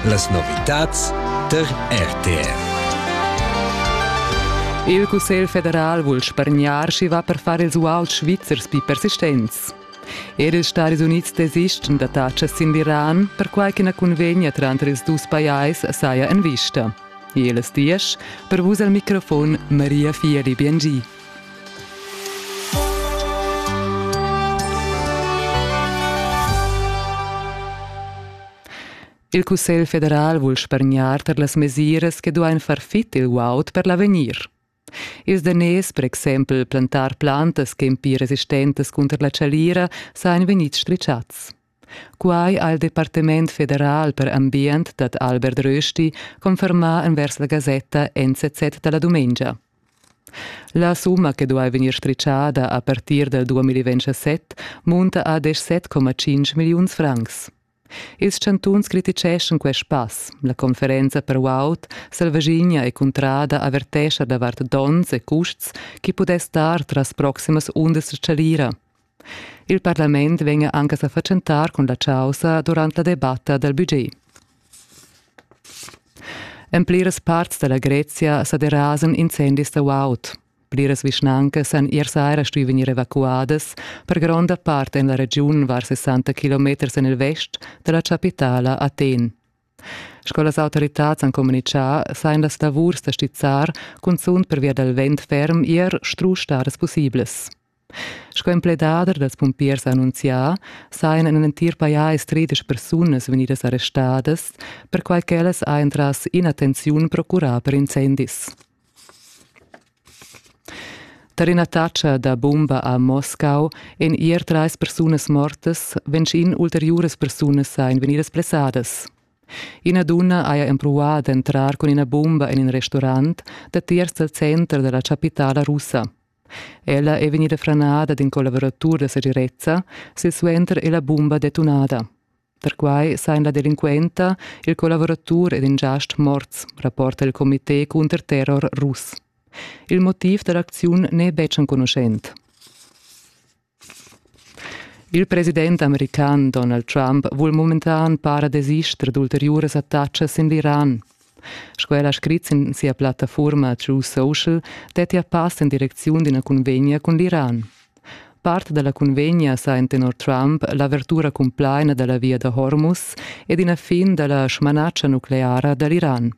Las novitads tar RTR. Il Cussegl federal vul spargnar sch'i va per far ils uals svizzers pi persistents. Er ils Stadis Unids desisten da tatschas sin l'Iran, perquai ch'ina cunvegna tranter ils dus pajais saja en vista. Jeles dies, per vus al microfon Maria Fieli Biengi. Il Cussegl federal vul spargnar tar las mesiras che duain far fit il guaud per l'avegnir. Ils daners, per exempel plantar plantas che ein pli resistentes cunter la chalira, sajan vegnids stritschats. Quai ha il Departement federal per ambient dad Albert Rösti confermà envers la gasetta NZZ da la dumengia. La summa che duai vegnir stritschada a partir dal 2027 munta a 17,5 milliuns francs. Ils chantuns criticeschan quest pass. La conferenza per guaud Selvaginia e Cuntrada avertescha davart donns e custs chi pudess dar tras proximas undas chalira. Il parlament vegn anc a sa fatschentar cun la chaussa durant la debatta dal budget. En pliras parts da la Grezia sa derasan incendis da guaud. Pliras vischnancas han ier saira stuì vegnir evacuadas per gronda part en la regiun var 60 km en il vest da la chapitala Aten. Sco las autoritads han communitgà, sajan las lavurs da stizzar cunzunt pervia dal vent ferm ier strusch stadas pussiblas. Sco empledader dals pumpiers annunzià sajan en l'entir pajais tredisch persunas vegnidas arrestadas, perquai ch'ellas hajan tras in'attenziun procurà per incendis. Tar in'attacca da bumba a Moscau èn ier trais persunas mortas, ventg ulteriuras persunas sajan vegnidas blessadas. Ina dunna haja empruvà d'entrar cun ina bumba en in restaurant datiers dal center da la chapitala russa. Ella è vegnida franada d'in collavuratur da segirezza, silsuenter è la bumba detunada. Perquai sajan la delinquenta, il collavuratur ed in giast morts, rapporta il comité cunter terror russ. Il motiv da l'acziun n'è betg enconuschent. Il president american Donald Trump vul momentan para desister d'ulteriuras attacas sin l'Iran. Sco el ha scrit sin sia plattafurma True Social, dettia pass en direcziun d'ina cunvegna cun l'Iran. Part da la cunvegna sa en tenor Trump l'avertura cumplaina da la via da Hormuz ed ina fin da la smanatscha nucleara da l'Iran.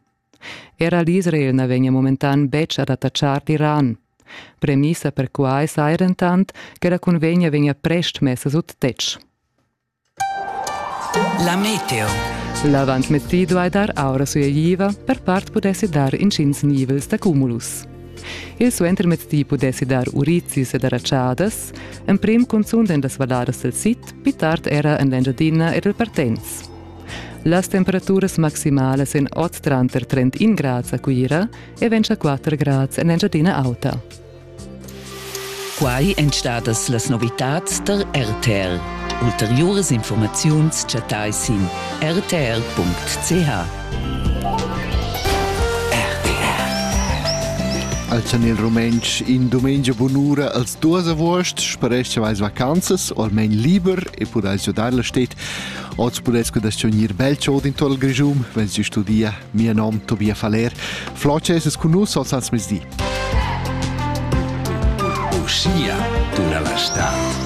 Era l'Israel na vegnia momentan betg ad attachar l'Iran. Premissa per quai saja dentant che la cunvegna vegnia prest messa sut tetg. La meteo. L'avantmettì duai dar aura sueigliva, per part pudessi dar intgins nivels da cumulus. Il suentermettì pudessi dar urizis ed aratschadas, emprim cunzunt en las valladas dal sid, pli tard era en l'Engiadina ed il Partenz. Las temperaturas maximalas en oz tranter 31 grads a Cuira e 24 grads en Engiadina Auta. Quai èn stadas las novitads tar RTR. Ulteriuras informaziuns chattai sin rtr.ch. Al chan il rumentsch in dumengia bunura als duas avuost spareschavais vacanzas, o almain liber e pudais giodar la stet Oz pudess cudascio gnir bel chod in tuot il Grischun, wenn si studia. Mia nom Tobias Faller. Floce es cun nus oz ans mezdi. Uschia tuna la stad.